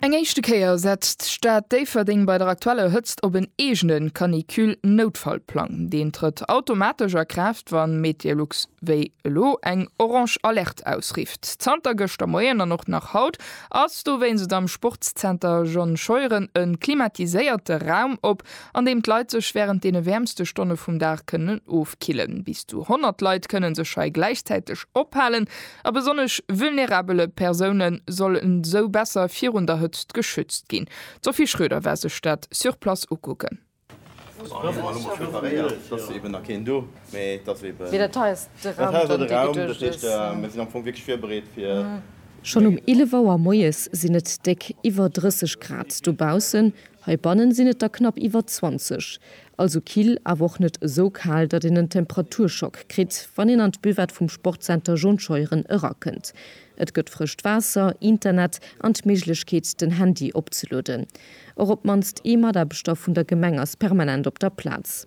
Eng éischte Kéier setzt d'Stad Déifferdeng bei der aktueller Hëtzt op en eegene Canicule-Noutfallplang. Deen trëtt automatesch a Kraaft, wa MeteoLux wéi elo eng orange Alerte ausrifft. Zanter gëschter Moien an och nach haut ass dowéinst am Sportszenter John Scheuren e klimatiséierte Raum op, an deem d'Leit sech wärend deene wäermste Stonne vum Dag kënnen ofkillen. Bis zu 100 Leit kënne sech hei gläichzäiteg ophalen, A besonnesch vulnerabele Persoune sollen esou besser virun der Hëtzt geschützt ginn. D'Sophie Schroeder war sech dat sur place ukucken. Schonn um 11 Auer moies sinn et déck iwwer 30 Grad dobaussen, heibanne sinn et der knapp iwwer 20. Also kill, awer och net esou kal, datt een en Temperaturschock kritt, wann een an d'Buvette vum Sportcenter John Scheuren erakënnt. Et gëtt frëscht Waasser, Internet an d'Méiglechkeet, den Handy opzelueden. Och op d'mannst ee Mataarbechter vun der Gemeng ass permanent op der Plaz.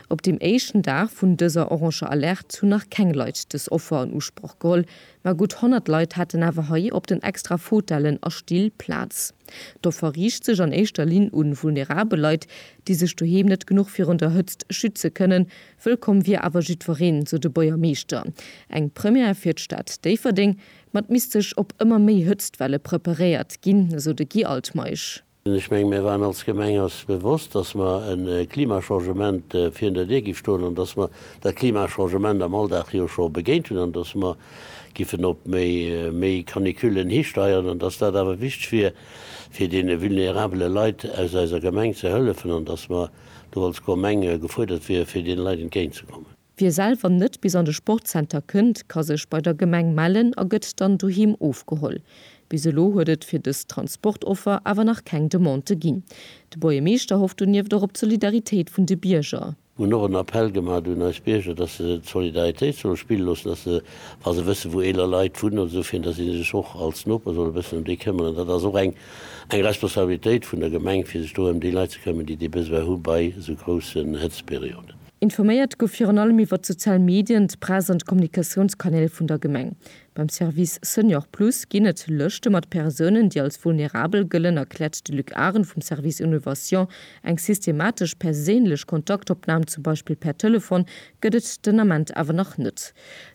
Op deem éischten Dag vun dëser oranger Alerte hunn nach keng Leit dës Offer an Usproch geholl, Mä gutt 100 Leit haten awer hei op den extra Fotellen a Still Plaz. D'Offer riicht sech an éischter Linn un vulnerabel Leit, déi sech doheem net genuch virun der Hëtzt schütze kënnen. Wëllkomm wier awer jiddwereen, sou de Buergermeeschter. Eng Première fir d'Stad Déifferdeng, ma et misst sech op ëmmer méi Hëtztwelle preparéiert ginn, esou de Guy Altmeisch. Ech menge mir waren als Gemeng eis bewosst, datt mer e Klimachangement virun der Dir gi stoen an datt mer dat Klimachangement am Alldag jo scho begéint hunn an datt mer giffen op méi Canicullen histeieren an datt dat awer wichteg wier fir deene vulnerabele Leit aus eiser Gemeng ze hëllefen an datt mer do als Gemeng gefuerdert wiere fir deene Leit entgéint ze kommen. Wie selwer net bis an de Sportzenter kënnt, ka sech bei der Gemeng mellen a gëtt dann doheem ofgeholl. Bis elo huet et fir dës Transportoffer awer nach keng Demande ginn. De Buergermeeschter hofft donieft och op d'Solidaritéit vun de Bierger. Mir hunn och en Appell gemaach un eis Bierger, dass se d'Solidaritéit solle spille loossen, dass se, wa se wësse wou eeler Leit wunnen oder esou, fir dass si sech och als Noper solle bëssen ëm déi këmmeren. Dat ass och eng Responsabilitéit vun der Gemeng, fir sech do ëm déi Leit ze këmmen, déi dee Besoin hu bei esou groussen Hëtztperioden. Informéiert gouf virun allem iwwer d'sozial Medien, d'Press an d'Kommunikatiounskanäl vun der Gemeng. Beim Service Senior Plus ginn et Lëschte mat Persounen, déi als vulnerabel gëllen, erkläert de Luc Arendt vum Service Innovation. Eng systematesch perséinlech Kontaktopnam, zum Beispill per Telefon, gëtt et den Ament awer nach net.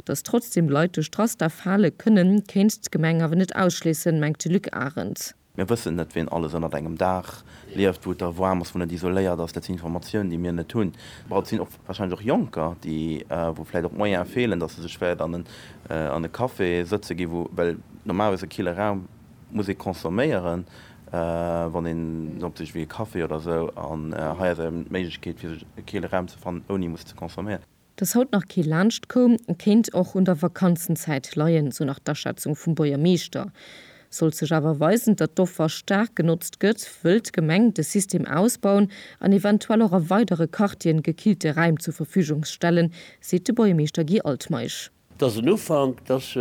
Datt trotzdeem Leit duerch d'Raster fale kënnen, kéint d'Gemeng awer net ausschléissen, mengt de Luc Arendt. Mir wëssen net, wien alles ënnert engem Daach lieft, wou et da waarm ass, wou net isoléiert ass. Dat sinn Informatiounen, déi mir net hunn. Mä et sinn och wahrscheinlech och Jonker, déi, wou vläicht och d'Moyene feelen, dass se sech wäert an en, an e Café sëtze gi wou, well normalerweis e kille Raum muss ee consomméieren, wann een en opsicht wéi e Café oder esou. An hei ass eben d'Méiglechkeet, fir sech e kille Raum ze fannen, ouni musse ze consomméieren. Dass haut nach kee laanscht koum, kéint och un der Vakanzenzäit leien, sou nach d'Aschätzung vum Buergermeeschter. Sollt sech awer weisen, datt d'Offer staark genotzt gëtt, wëll d'Gemeng de System ausbauen an eventuell och a weidere Quartieren gekillte Räim zur Verfügung stellen, seet de Buergermeeschter Guy Altmeisch. Et ass en Ufank, et ass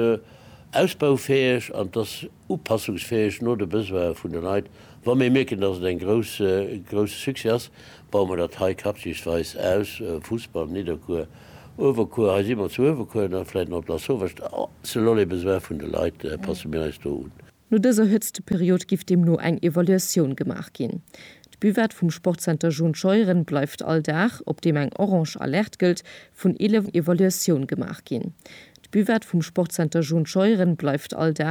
ausbaufäeg an et ass upassungsfäeg no de Besoine vun de Leit. Wa mir mierken, dass et e grousse Succès ass, baue mir dat hei quartiersweis aus, Fussball, Nidderkuer, Uewerkuer, hei si mer zu Uewerkuer, da vläicht nach op Lasauvage, selon les besoins vun de Leit passe mir eis do un. No dëser Hëtzteperiod giff deemno eng Evaluatioun gemaach ginn. D'Buvette vum Sportzenter John Scheuren bleift all Dag, op deem eng orange Alerte gëllt, vun 11 Evaluatioun gemaach ginn. D'Buvette vum Sportzenter John Scheuren bleift all Dag.